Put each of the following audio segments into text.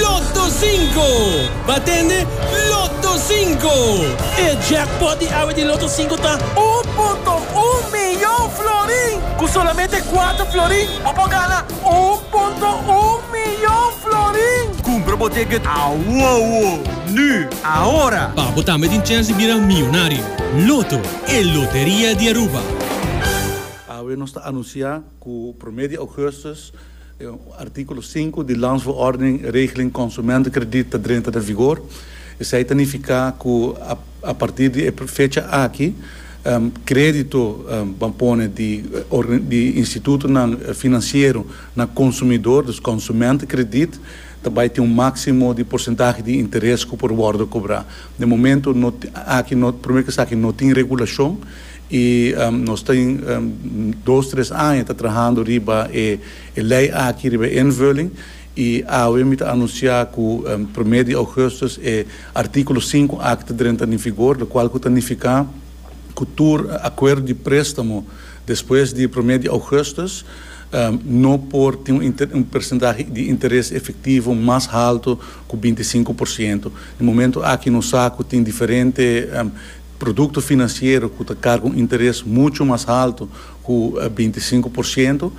Lotto Cinco! Bo a tende? Lotto Cinco! E jackpot di awe di Lotto Cinco ta un punto un miyon florin! Ku solamente kuater florin bo por gana un punto un miyon florin! Kumpra bo ticket awowo! Nu! Ahora! Pa bo tambe tin chèns di bira miyonario! Lotto, e loteria di Aruba! Awe nos ta anunsiá. Cu prome di augustus articulo sinku di Landsverordening regeling consumentenkrediet ta drenta den vigor. Esei ta nifica cu a partir di e fecha aki credito ban pone di di institutonan financiero na consumidor, dus consumentenkrediet, ta bay tin un maximo di porcentahe di interes cu por wordo cobra. Den momento no aki no prome kes aki no tin regulacion I nos ta dos, tres aña ta trahando riba e lei aki, riba e invulling. I awe mi ta anuncia cu prome di augustus e articulo sinku aki ta drenta na vigor, locual cu ta nifica cu tur acuerdo di prestamo despues di prome di augustus no por tin un percentahe di interes efectivo mas halto cu binti sinku por ciento. Na momento aki no sa cu tin diferente. Produkto finansiero ku ta karga un interes muchu mas haltu ku binti sinku por sientu,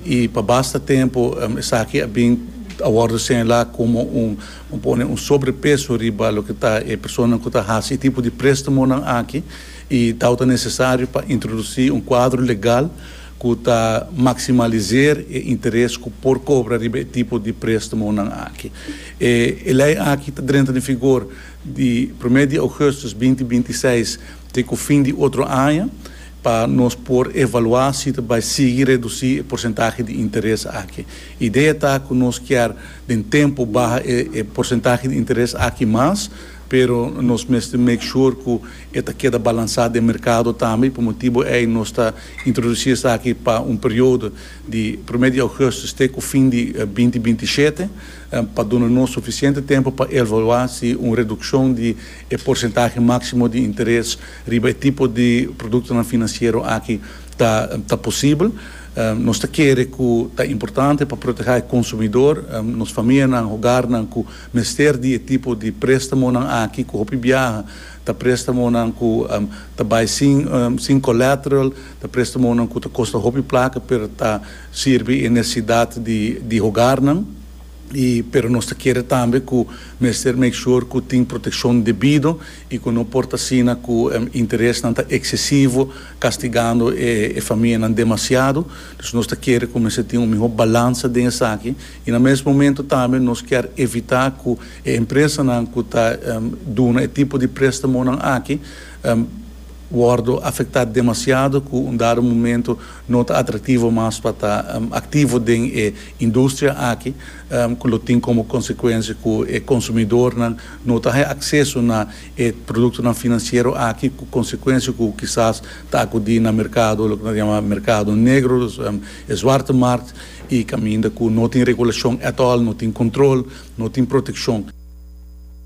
i pa basta tempu esaki a bin a wòrdu señalá komo un un pone un sobrepeso riba loke ta e personanan ku ta hasi e tipo di prestamonan aki i tau ta nesesario pa introdusí un kuadro legal ku ta maksimaliser e interes ku por kobra riba e tipo di prestamonan aki. E lei aki ta drenta den vigor di promé di ougùstus binti binti seis te ku fin di otro aña pa nos por evaluá si ta bai sigui redusí e porsentahe di interes aki. Idea ta ku nos kier den tempu baha e porsentahe di interes aki mas, pero nos mester make sure ku e ta keda balansá den merkado tambe, pa motibu ei nos ta introdusí esaki pa un periodo di promé di ougùstus te ku fin di binti binti shete. pa duna nos sufisiente tempu pa evaluá si un redukshon di e porsentahe máksimo di interes riba e tipo di produktonan finansiero aki ta ta posibel. Nos ta kere ku ta importante pa protehá e konsumidor, nos famianan, hogarnan ku mester di e tipo di préstamonan aki ku hopi biaha ta préstamonan ku ta bai sin sin collateral, ta préstamonan ku ta kosta hopi plaka pero ta Sirbi e nesesidat di hogarnan y pero nos ta kere tambe cu mester make sure cu tin proteccion debido y cu no por ta asina cu interesnan ta excesivo castigando e famianan demasiado. Dus nos ta kere cu mester tin un miho balansa den esaki y na mes momento tambe nos kier evita cu e empresanan cu ta duna e tipo di prestamonan aki. wòrdu afektá demasiado ku un dado momento no ta atraktivo mas pa ta aktivo den e industria aki ku lo tin komo konsekuensia ku e konsumidornan no ta haña akseso na e produktonan finansiero aki ku konsekuensia ku kisas ta akudí na merkado loke nos ta yama merkado negro dus e zwarte markt i kaminda ku no tin regulashon at all no tin kontrol no tin protekshon.